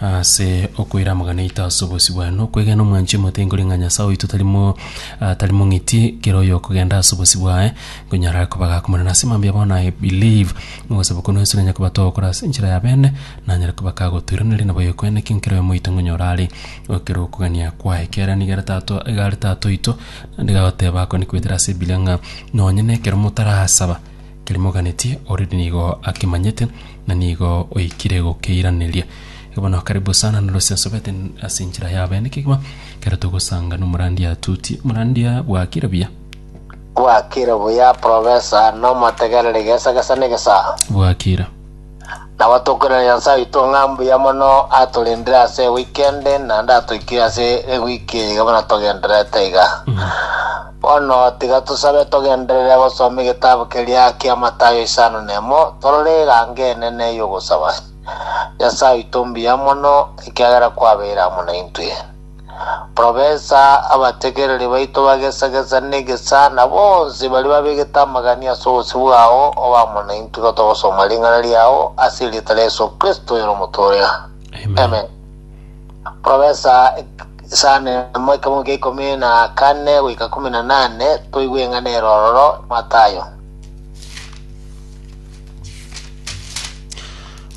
Ase okoiramogana eito ase obosio bwane, na okwegena omwanchie mote, nkori ng'a Nyasae oito tari mo ah, tari mong'iti, kera oyo okogenda ase obosio bwaye, nkonyara are koba gakomorana. Ase mambia bono I believe, mogosaba kwane Yesu nanye kobatooa okora ase enchera ya bene, nanyare koba kagotoiraneria nabo ekwene ki nkera oyo moito nkonyora are ekero okogania kwaye. Kera nigo are Tata o- iga are Tata oito, naende gagoteba akwane kobetera ase Ebibilia ng'a nonye nekero motarasaba, Kerimoganeti already nigo akimanyete na nigo oikire gokeiraneria igo bono karibu sana na Lucy Nsobete ase enchera ya abene kegima kero togosanga nomorandia tuti morandia bwakire buya Bwakire buya Professor, nomotegereri gesa gesa ne gesa. bwakire. Nabo tokorera Nyasae oito ng'a mbuya mono atorendire ase ewiki ende, naende atoikire ase ewiki eye iga buna togendererete iga. Bono tiga tosabe togenderere gosoma egetabu keria kia Matayo isano na emo, torore erango enene y'ogosaba. Nyasae oito mbuya mono, ekiagera kwabeire amo naintwe. Profesa, Abategereri baito bagesagesa negesana bonsi baria babegete amagani ase obosio bwao, obamo naintwe igo togosoma ring'ana riao ase erieta ria Yesu Kristo oyore omotooria. Amen. Amen. Profesa, Isano emo ekemomo kia ikomi na kane goika ikomi na nane, toigwe eng'ana ere ororo, Matayo.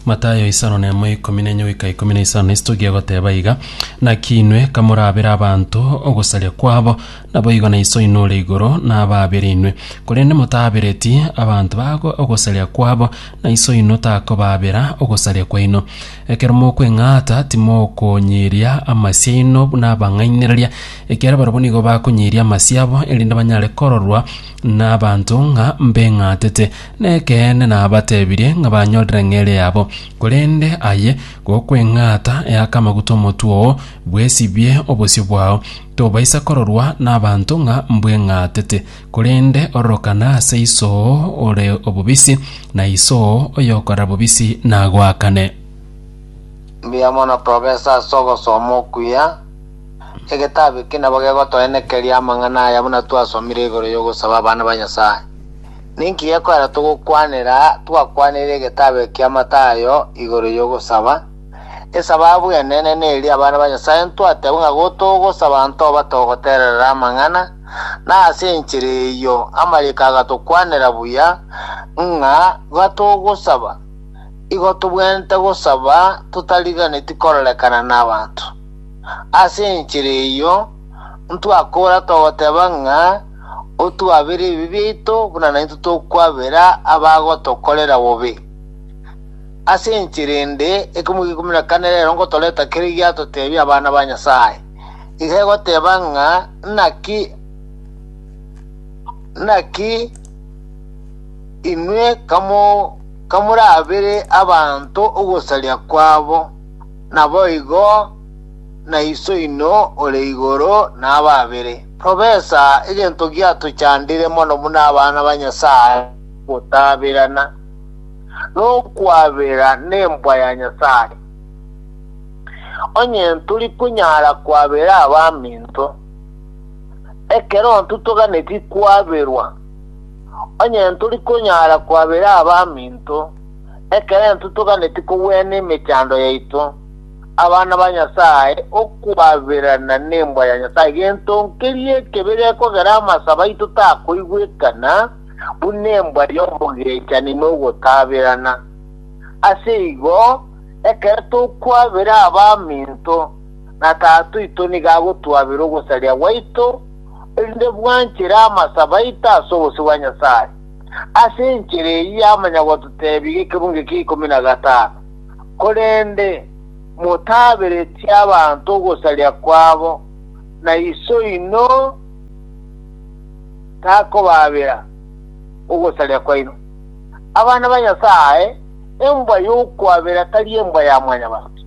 Matayo isano na emo ikomi na enye goika ikomi na isano na isitoki egoteba iga, Naki inwe kamorabere abanto ogosaria kwabo, naboigo na Iso oino ore igoro nababere inwe. Korende motabereti abanto bago ogosaria kwabo, na Iso oino takobabera ogosaria kwaino. Ekero mokweng'ata timokonyiria amasio aino buna abang'ainereria, ekiagera barabwo nigo bakonyiria amasio abo, erinde banyare kororwa nabanto ng'a mbeng'atete. Nekeene nabatebirie ng'a banyorire ng'eria yabo, korende aye gokweng'ata eaka amaguta omotwe oo, bwesibie obosio bwao. Tobaisa kororwa nabanto ng'a mbweng'atete, korende ororokana ase Iso oo ore obobisi, na Iso oo oyokorera bobisi nagoakane. Mbuya mono tobe ase ase ogosoma okuya egetabu eke nabo gegotoenekeria amang'ana aya buna twasomire igoro y'ogosaba abana ba Nyasae. Ninki gekogera togokwanera twakwanire egetabe kia Matayo igoro y'ogosaba? Esababu enene neri abana ba Nyasae ntwatebwe ng'a gotogosaba ntoba togotererera amang'ana, na ase enchera eyio amariiko agatokwanera buya ng'a gatogosaba igo tobwenerete gosaba totariganeti kororekana nabaanto. Ase enchera eyio ntwakora togoteba ng'a otuabere ebibe biaito buna naintwe tokwabera abagotokorera bobe. Ase enchera ende, ekemo g'ikumi na kane rero ngotoreta kere giatoteebia abana ba Nyasae. Iga egoteba ng'a naki naki inwe kamo- kamorabere abanto ogosaria kwabo, naboigo na Iso oino ore igoro nababere. Tobesa egento giatochandire mono buna abana ba Nyasae, gotaberana, nokwabera nembwa ya Nyasae. Onye tori konyara kwabera abaminto, ekero intwe toganeti kwaberwa, onye tori konyara kwabera abaminto, ekero intwe toganeti kogwena emechando yaito, abana ba Nyasae okwaberana nembwa ya Nyasae, gento nkeria ekebe gekogera amasabo aito takoigwekana, buna embwa y'omogechani na ogotaberana. Ase igo, ekero tokwabera abaminto, na Tata oito nigo agotwabera ogosaria gwaito, erinde bwanchera amasabo aito ase obosio bwa Nyasae. Ase enchera eyio yamanya gototebia ekebungo ekia ikomi na gatano. Korende motaaberetie abanto ogosaria kwabo, na Iso oino takobaabera ogosaria kwaino. Abana ba Nyasae, embwa y'okwabera tari embwa ya mwanyabanto.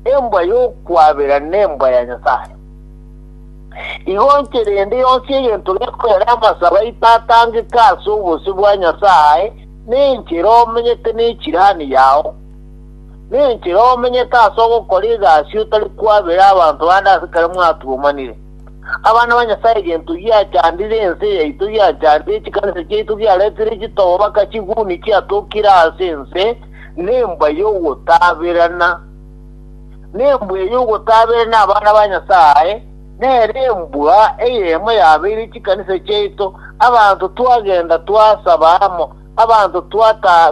Embwa y'okwabera nembwa ya Nyasae. Igo inche rende yonsi egento gekorera amasabo aito atangeka ase obosio bwa Nyasae, Nenchera omenyete nechirani yao, nenchera omenyete ase ogokora egasi otari kwabera abanto bande ase ekero mwatugumanire. Abana ba Nyasae gento giachandire ense yaito giachandire chikanisa chiaito giaretire chitogo baka chiguni chiatokire ase ense nembwa yogotaberana nembwa eyogotaberana abana ba Nyasae Nere embua eyemo yabeire chikanisa chiaito, abanto twagenda twasaba amo, abanto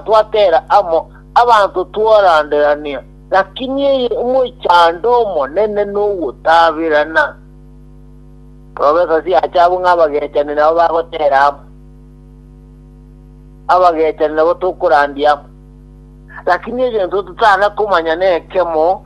twatera amo, abanto twaranderania, lakini eye omochando omonene nogotaberana. Profesa Siacha abwo ng'a abagechani nabo bagotera amo, abagechani nabo tokorandia amo, lakini egento totana komanya nekemo,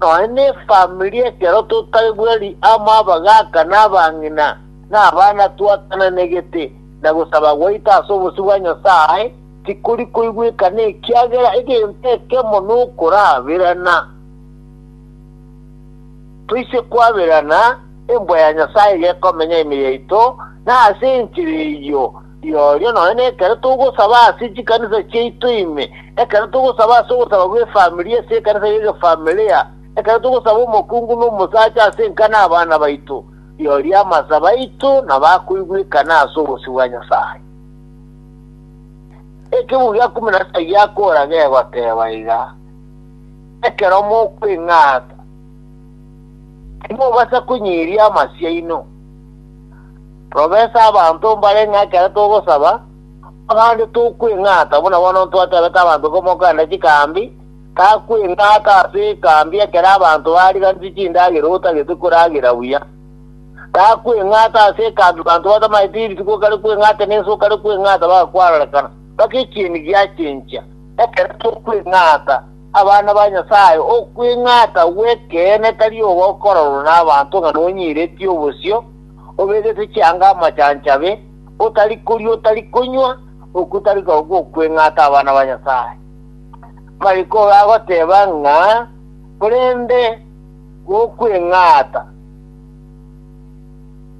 Nonya nefamiri ekero totari bweri amo abagaaka na abang'ina na abana twatananegete, na gosaba gwaito ase obosio bwa Nyasae tikori koigweka nekiagera egento ekemo nokoraberana. Toise kwaberana, embwa ya Nyasae iga ekomenya ime yaito, na ase enchera eyio, Rirorio nonya nekero togosaba ase chikanisa chiaito ime, ekero togosaba ase ogosaba gw'efamilia ase ekanisa y'egefamilia, ekero togosaba omokungu na omosacha ase enka na abana baito, rirorio amasabo aito nabo akoigwekana ase obosio bwa Nyasae. Ekeguo gia kumi na saba giakora gegoteba iga, Ekero mokweng'ata, timobasa konyiria amasio aino. Robesa abanto mbare ng'a ekero togosaba, abande tokweng'ata, buna bono ntwatebete abanto komokenda chikaambi, takweng'ata ase ekaambi ekero abanto bariganeti chindagera otagete koragera buya. Takweng'ata ase ekaambi abanto batamaete rituko okare kweng'ata nense okare kweng'ata bagakwarorekana, mpaka ekieni giachencha. Ekero tokweng'ata abana ba Nyasae, okweng'ata gw'ekeene tari ogokororwa nabanto ng'a nonyiretie obosio, obegete chianga amachancho abe, otari koria otari konywa, okotari koba gokweng'ata abana ba Nyasae. Mariko oyo agoteba ng'a korende gokweng'ata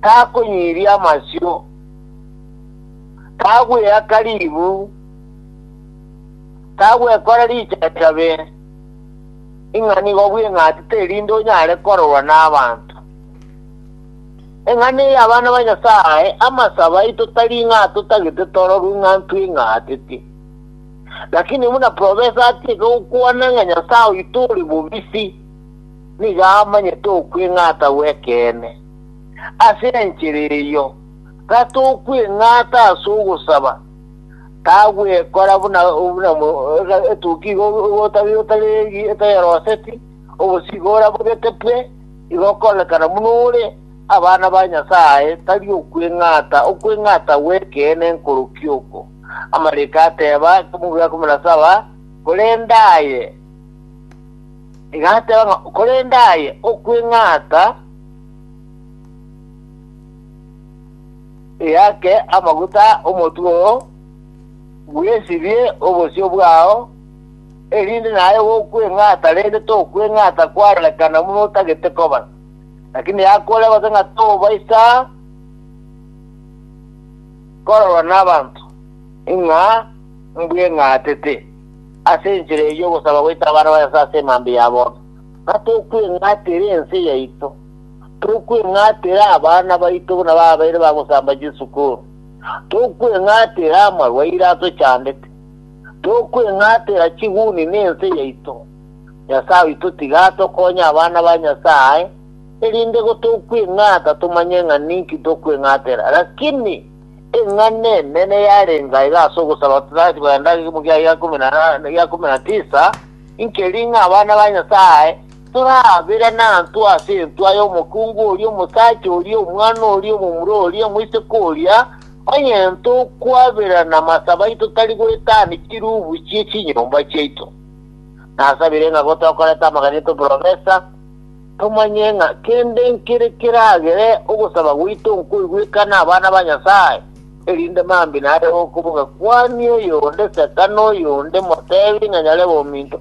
takonyiria amasio, tagweaka ribu, tagwekora richachabe, ing'a nigo bweng'atete erinde onyare kororwa nabanto. Eng'ana eye abana ba Nyasae, amasabo aito tari ng'a totagete tororwe ng'a ntweng'aatete. Lakini buna profesa atieke gokwana ng'a Nyasae oito ore bobisi, nigo amanyete okweng'ata gw'ekeene. Ase enchera eyio, gatokweng'ata ase ogosaba, tagwekora buna buna etoki igo igo otari otari etari eroseti, obosio igo orabogete bwe, Igo okoonekana buna ore abana ba Nyasae, tari okweng'ata, okweng'ata gw'ekeene nkorokio oko. Amariko ateeba, Ekemogo gia ikomi na saba, Korende aye, iga ateeba ng'a, korende aye okweng'ata eake amaguta omotwe oo, bwesibie obosio bwao, erinde naye gokweng'ata, rende tokweng'ata kwarorekana buna otagete koba. Lakini yakore gose ng'a tobaisa kororwa nabanto ng'a mbweng'atete, ase enchera eyio ogosaba goita abana ba Nyasae ase emambia ya bono. Ng'a tokweng'atera ense yaito, tokweng'atera abana baito buna babeire bagosamba chisukuru, tokweng'atera amarwaire atochandete, tokweng'atera chiguni nense yaito. Nyasae oito tiga atokonye abana ba Nyasae, erinde gotokweng'ata tomanye ng'a ninki tokweng'atera. Lakini eng'ana enene yarenge aiga ase ogosaba Titus bwa endagera ekemomo gia ikomi na tisa, inkeri ng'a abana ba Nyasae, Toraabera nantwe ase entwa y'omokungu oria, omosacha oria, omwana oria, omomura oria, omoiseke oria, onye tokwabera namasabo aito tari goetania chiruubu chie chinyomba chiaito. Nasabire ng'a gotokoreta amaganyete oborobesa, tomanye ng'a kende nkere keragere ogosaba gwaito nkoigwekane abana ba Nyasae, erinde mambia nare okoboka kwani oyonde seta noyonde motebi ng'a nyare bominto,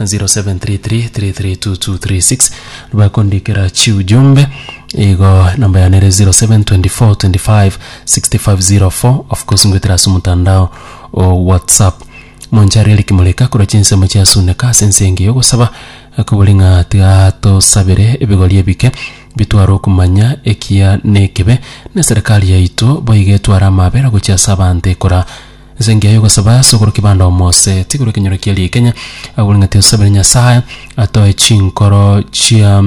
0733332236 bakondikera chiujumbe igo namba yane ere 0724256504 of course ngwetera ase omotandao o whatsapp monchari eric moreka korwa chinsemo chiasuneka ase ense enge yogosaba kobori ng'a tiga tosabere ebigori ebike bitware okomanya ekiya na ekebe na eserekari yaito boigo etware amaabera gochia ase abanto ekora Ase engiya y'ogosaba ase ogoro kebanda omose tigure ekenyoro kia riekenya, agwo ring'ati osabere Nyasae atoe chinkoro chia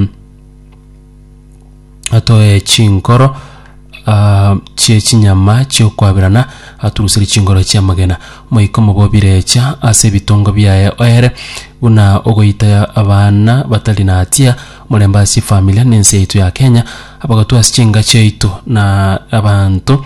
atoe chinkoro ah, chie chinyama chi'okwaberana, aturuserie chinkoro chi'amagena. Moika omobobire echa ase ebitongo biaye oere, buna ogoita abana batari na hatia, omorembe ase chifamilia na ense yaito ya Kenya, abagatu ase chingacho yaito na abanto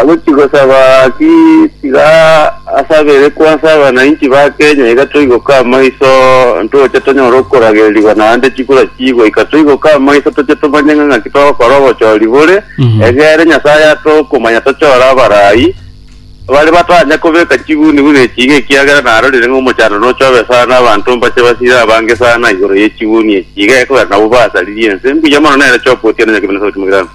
Agochia gosaba ki tiga asabere kwansa abanainchi ba Kenya iga toigoka amaiso ntoche tonyore okoragererigwa naende chikura chiigwe ika toigoka amaiso toche tomanye ng'a ng'aki togokora obochori bore Mhm. egere Nyasaye ate okomanya tochore abarai bare batanya kobeka chiguniguni echi iga ekiagera narorire ng'a omochando nochobe sana abanto mbache basire abange sana igoro ye chiguni echi iga ekogera nabwo basaririe ense mbuya mono nere chopotia na Nyakibeni Sauti Mogirango.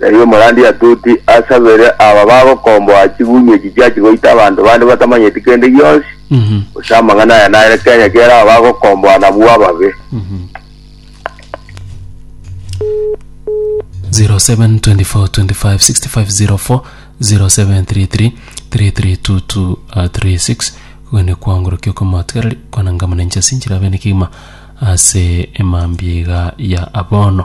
Erio omorandi Yatuti asabere aba bagokomboa chigunyu echi chiachia goita abanto bande batamanyeti kende gionsi, gose amang'ana aya nare kenya kiere aba bagokomboa nabwo ababe. 0724256504 0733332236 kwene kwangorokia okomotigareri kwanangamana inche ase enchera ya bene kegima ase emambia iga ya abono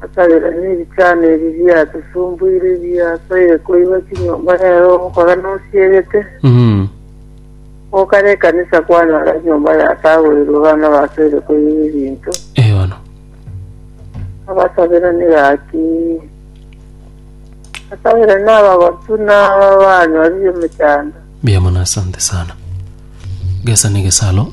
Akabera nebichano ebi biatusumbuire biasoire koigwa chinyomba rero ogokora nosiegete Mhm. gokara ekanisa kwanyora nyomba yatagoirwe bana basoire koigwa ebinto Eh, bono. abasabera negaki asabera nabagotu naba banyorire emechando Mbuya mono asante sana. Gesa negesalo.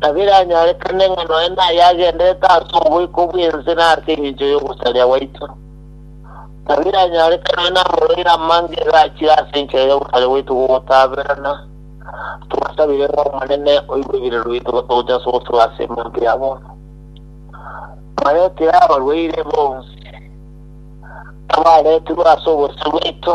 na biranyorekane ng'a nonya naye agenderete ase oboiko bw'ense na ase engencho y'ogosaria gwaito, na biranyorekane nonya namoroire amange iga achire ase enchera y'ogosaria gwaito gw'ogotaberana, tobasabire ng'a Omonene oigwe ebireru biaito gotogocha ase ogosibwa ase emambe ya bono. Twaretire abarwaire bonsi abareetirwe ase obosio bwaito,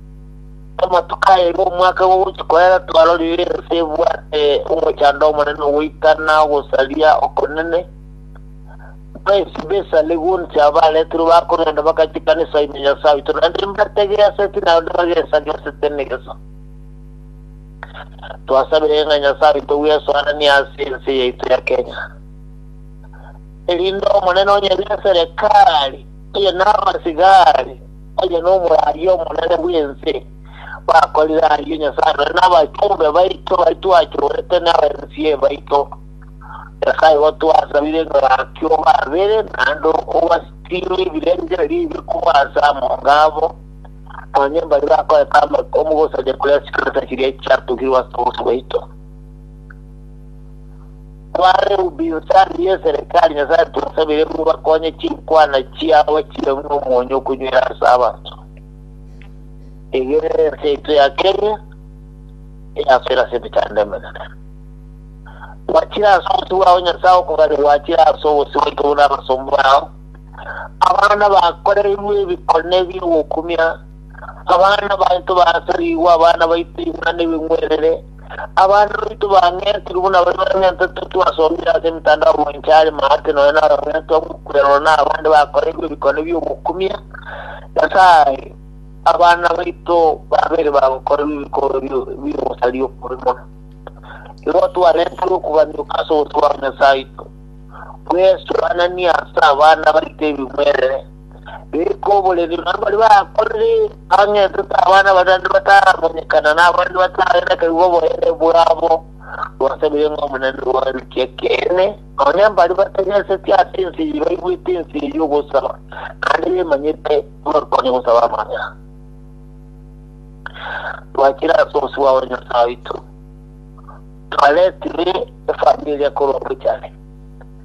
Amatuko aye omwaka gogochia koera twarorire ense ebwate omochando omonene ogoika na ogosaria okonene. Bwensi b'ense are gonsi abaretirwe bakorenda bagachia ekanisa ime Nyasae oito, naende mbategeaseti naende bagesagesete negeso. Twasabire ng'a Nyasae oito bwesoananie ase ense yaito ya Kenya, erinde Omonene onye neserekari, oye nabasigari, Oyo nomoraria omonene bw'ense. Bakorire ayio Nyasae nonye nabachumbe baito baria twachorete n'abaensi baito. Nyasae gotwasabire ng'a gaki obabere naende obasitime ebirengererio ebibe korwa ase amonga abo, nonye mbaria bakorete amakumu gose chikorosia chiria chiatugirwe ase obosio bwaito. Abarehubi gose arigie eserekari Nyasae twasabire ng'o bakonye chinkwana chiabo chire ng'o omonyo okonywera ase abanto. Tegerera ense yaito ya Kenya eyasore ase emechando emenene. Gwachire ase obosio bwao Nyasae okogania gwachire ase obosio bwaito buna abasomba bao. Abana bakoreirwe ebikone biogokumia, abana baito basarigwe abana baito imana ebing'werere, Abande baito bang'entirwe buna baria bang'entetwe twasomire ase emetandao mwancha are maate nonya narong'entwa gw'okwerora na abande bakoreirwe ebikone bi'ogokumia Nyasae abana baito babere bagokorerwa ebikoro bi'ogosaria okubi mono. Igo twarenterwe okoganyuka ase obosio bwa Nyasae oito bw'esugananie ase abana baito ebimwerere. Rikoborerio na baria bakorire ang'e tote abana abasacha bataramanyekana, na abande batare nakaigwa oboyere bwabo, twasabeire ng'a Omonene obarutie ekeene, nonya mbaria batageseti ase ense eye baigwete ense eye y'ogosaba, naende bemanyete bakonye gosaba amang'ana. Twachire ase obosio bwabo na Nyasae oito, twaretire efamiri eria korwa Buchani.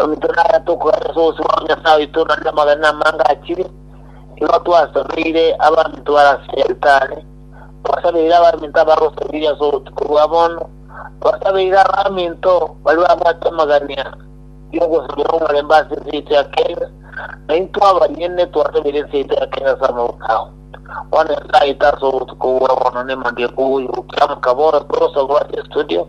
Ominto naya tokoera ase obosio bwa Nyasae oito na namagena amange achire, nigo twasabeire abaminto bare ase altare, twasabeire abaminto abagosabiria ase obotuko bwa bono, twasabeire abaminto baria babwate amagania y'ogosabera omorembe ase ense yaito ya Kenya, na intwe abanyene twasabeire ense yaito ya Kenya ase amaboko ao. Bono Nyasae oito ase obotuko bwa bono nemandia ekogoyokia mokabooro tore osabwa ase estudio,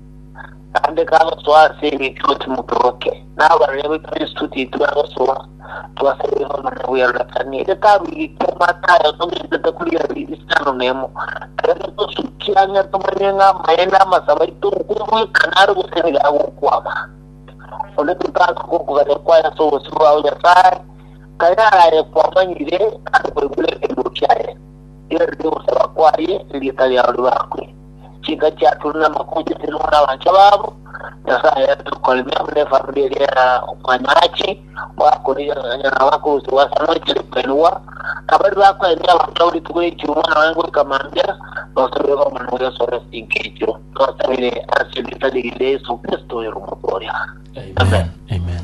naende kagosoa ase eng'encho ase motoboke, na abarwani baito Kristo titwegosoa twaserire komanya bwerorokani. Ere taruigete amato aye otogetete kori are isano nemo, erio tosukia ng'a tomanye ng'a amaene amasabo aito nkogoika naro gose nigo agokwama. Onde totakoba gokogania kwaye ase obosio bwao Nyasae, tari araye kwamanyire ase koigwa ekeegwa kiaye, riarenge ogosaba kwaye, erieta riao ribakwe. chinka chiaturwe namakuucha ase nore abancha babo, Nyasae aye tokoremia buna efamiri eria ya omwanyahachi oakori nyarao akorusigwa ase amache ri kwenigwa, abari bakoendia abanto abo rituko riachiru omwana waye goika mambia, nosabire koromana na Yeso ore chinka echio. Twasabire ase erieta rigiya ria Yeso Kristo oyoromorwe oria. Amen. Amen.